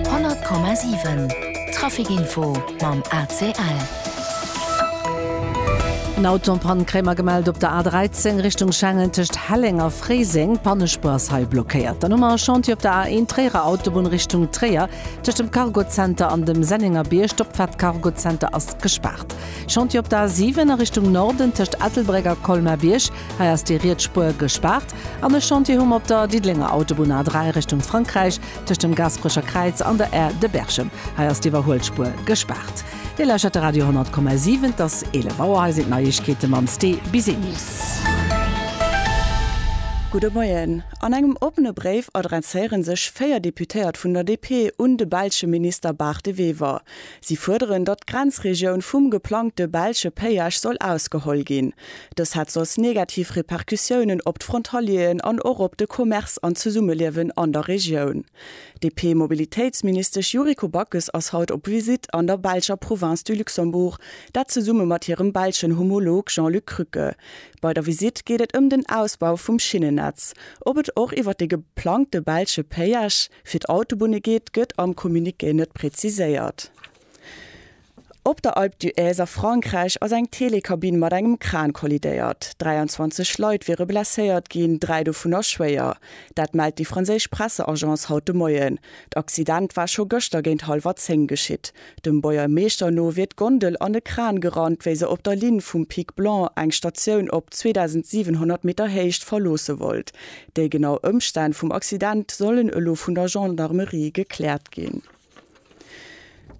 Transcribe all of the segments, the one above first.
100,7 Trafic Info mam ACL. Eng Autopann kréie mer gemellt op der A13 Richtung Schengen tëscht Helleng a Fréiseng. D'Pannespuer ass hei blockéiert. Dann hu mer e Chantier op der A1 Tréierer Autobunn Richtung Tréier tëscht dem Cargozenter an dem Sennengerbierg. D'Opfaart Cargozenter ass gespaart. Chantier op der A7 a Richtung Norden tëscht Ettelbréck a Colmer-Bierg. Hei ass déi riets Spuer gespaart an e Chantier hu mer op der Diddelenger Autobunn A3 Richtung Frankräich tëscht dem Gasperecher Kräiz an der Aire de Berchem. Hei ass d'Iwwerhuelspuer gespaart. Dir lauschtert de Radio 100,7. Et ass 11 Auer. Hei sinn d'Neiegkeete mam Sté Bisenius. Gudde Moien. An engem oppene Bréif adresséiere sech véier Deputéiert vun der DP un de belsche Minister Barth de Wever. Si fuerderen, datt d'Grenzregioun vum geplangte belsche Péage soll ausgeholl ginn. Dës hätt soss negativ Repercussiounen op d'Frontalieren an och op de Commerce an d'Zesummeliewen an der Regioun. D'DP-Mobilitéitsministesch Yuriko Backes ass haut op Visitt an der belscher Province du Luxembourg, dat zesumme mat hirem belschen Homolog Jean-Luc Krücke. Bei der Visitt geet et ëm den Ausbau vum Schinnennetz. Ob et och iwwer de geplangte belsche Péage fir d'Autobunne geet, gëtt am Communiqué net preziséiert. Op der Alpe d'Huez a Frankräich ass eng Telekabinn mat engem Kran kollidéiert. 23 Leit wiere blesséiert ginn, dräi dovunner schwéier. Dat mellt déi franséisch Presseagence haut de Moien. D'Accident war scho gëschter géint hallwer zéng geschitt. Dem Boiermeeschter no wier d'Gondel an e Kran gerannt, wéi se op der Linn vum Pic Blanc eng Statioun op 2.700 Meter Héicht verloosse wollt. Déi genau Ëmstänn vum Accident sollen elo vun der Gendarmerie gekläert ginn.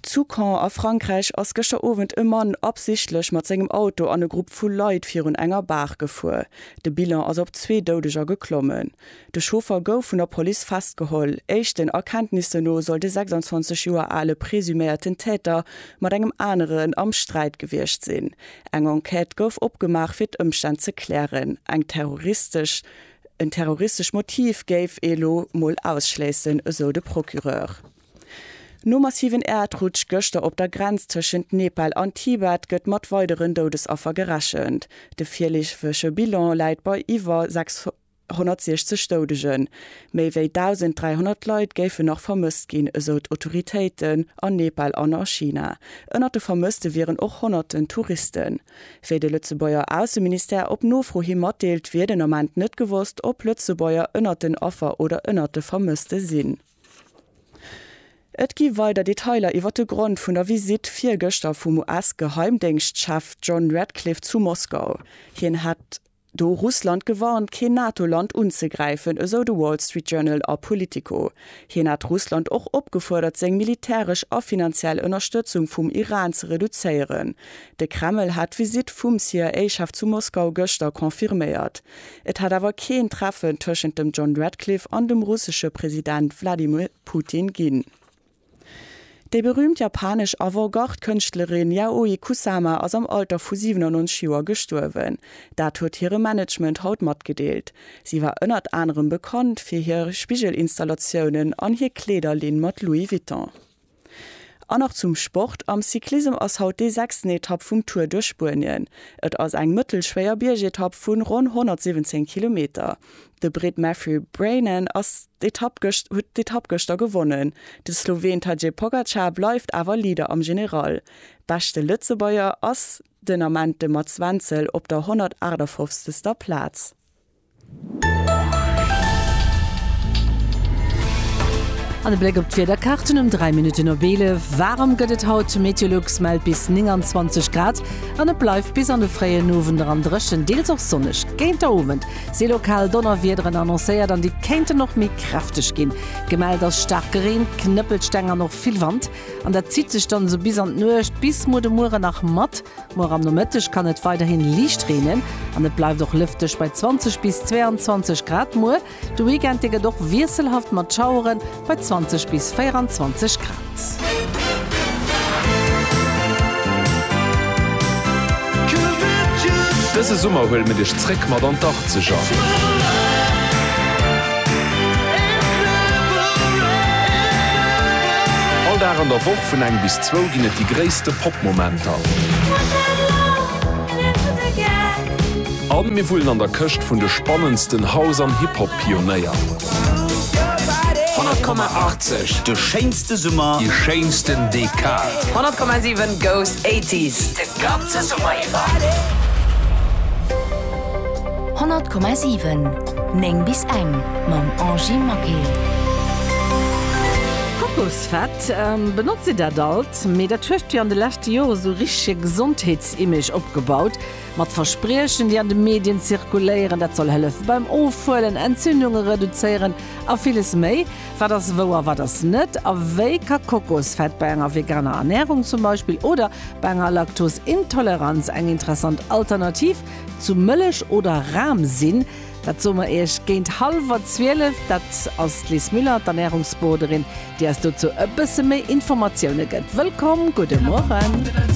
Zu Caen a Frankräich ass gëschter Owend e Mann absichtlech mat sengem Auto an e Grupp vu Leit virun enger Baach gefuer. De Bilan ass op zwee Doudeger geklommen. De Chauffer gouf vun der Police festgeholl. Éischten Erkenntnissen no soll de 26 Joer ale presuméierten Täter mat engem aneren am Sträit gewiescht sinn. Eng Enquête gouf opgemaach, fir d'Ëmstänn ze klären. Eng terroristesch En terroristescht Motiv géif ee lo mol ausschléissen, esou de Procureur. Nom massiven Äerdrutsch gëschter op der Grenz tëschent Nepal an Tibet gëtt mat weideren Doudesaffer gerechent. De virleefege Bilan läit bei iwwer 660 Doudegen. Méi wéi 1.300 Leit géifen nach vermësst ginn, esou d'Autoritéiten an Nepal an a China. Ënnert de Vermësste wieren och honnerten Touristen. Wéi de Lëtzebuerger Ausseministère op Nofro hi matdeelt, wier den Ament net gewosst, ob Lëtzebuerger ënnert den Affer oder ënnert de Vermësste sinn. Et gi weider Detailer iwwer de Grond vun der Visitt virgëschter vum US-Geheimdéngschtchef John Ratcliffe zu Moskau. Hien hätt Do hu Russland gewarnt, keen NATO-Land unzegräifen, esou de Wall Street Journal a Politico. Hien hat Russland och opgefuerdert, seng militäresch a finanziell Ënnerstëtzung vum Iran ze reduzéieren. De Kreml hat d'Visitt vum CIA-Chef zu Moskau gëschter confirméiert. Et hätt awer keen Treffen tëschent dem John Ratcliffe an dem russesche President Wladimir Putin ginn. Déi berüümt japanesch Avant-Garde-Kënschtlerin Yayoi Kusama ass am Alter vu 97 Joer gestuerwen. Dat huet hire Management haut matgedeelt. Si war ënnert anerem bekannt fir hir Spigel-Installatiounen an hir Kleederlinn mat Louis Vuitton. An nach zum Sport, Am Cyclissem ass haut déi sechsten Etapp vum Tour duerch Spuenien. Et ass eng mëttelschwéier Biergetapp vu ronn 117 Kilometer. De Britt Matthew Brennan ass d'Etapp gëscht huet d'Etapp gëschter gewonnen. De Sloween Tadej Pogacar bleift awer Leader am General. Beschte Lëtzebuerger ass den Ament de Mats Wenzel op der 158. Plaz. An e Bléck op d'Wiederkaarten um 3 Minutten op 11. Waarem gëtt et haut, Meteolux mellt bis 29 Grad an et bleift bis an de fréien Owend eran dréchen, deels och sonneg. Géint der Owend Si lokal Donnerwiederen annoncéiert an déi kéinten och méi kräfteg ginn. Gemellt ass Staarkreen, Knëppelsteng an och vill Wand. An dat zitt sech dann esou bis an d'Nuecht, bis muer de Mueren nach mat. Muer am Nomëtteg kann et weiderhin liicht reenen an et bleift och lëfteg bei 20 bis 22 Grad. Muer de Weekend, dee gëtt och wiesselhaft mat Schaueren. bei 20 bis 24 Grad. Dëse Summer huele mir dech zréck mat an d'Achtzeger. All Dag an der Woch vun eng bis zwou ginn et déi gréisste Pop-Momenter. A mir wullen an der Këscht vun de spannendsten House an Hip-Hop-Pionéier. 100,80 De schéinste Summer, déi schéinsten Dekad. 100,7 Goes 80s de ganze Summer iwwer. 100,7 9 bis eng mam Angie Maquet. Kokosfett, benotzt Dir dat alt? Mee dat hueft fir an de leschte Jore sou richtege Gesondheetsimage opgebaut. Mat Verspriechen, déi an de Medien zirkuléieren, dat soll hëllefe beim Ofhuelen, Entzündunge reduzéieren a villes méi. Wat ass wou a wat ass net? A wéi ka Kokosfett bei enger veganer Ernärung zum Beispill oder bei enger Laktosintoleranz eng interessant Alternativ zu Mëllech oder Ram sinn? Dat soe mer Iech géint hallwer zwielef. Dat ass d'Liz Müller, d'Ernärungsboarderin, déi eis dozou e bësse méi Informatioune gëtt. Wëllkomm, gudde Mueren.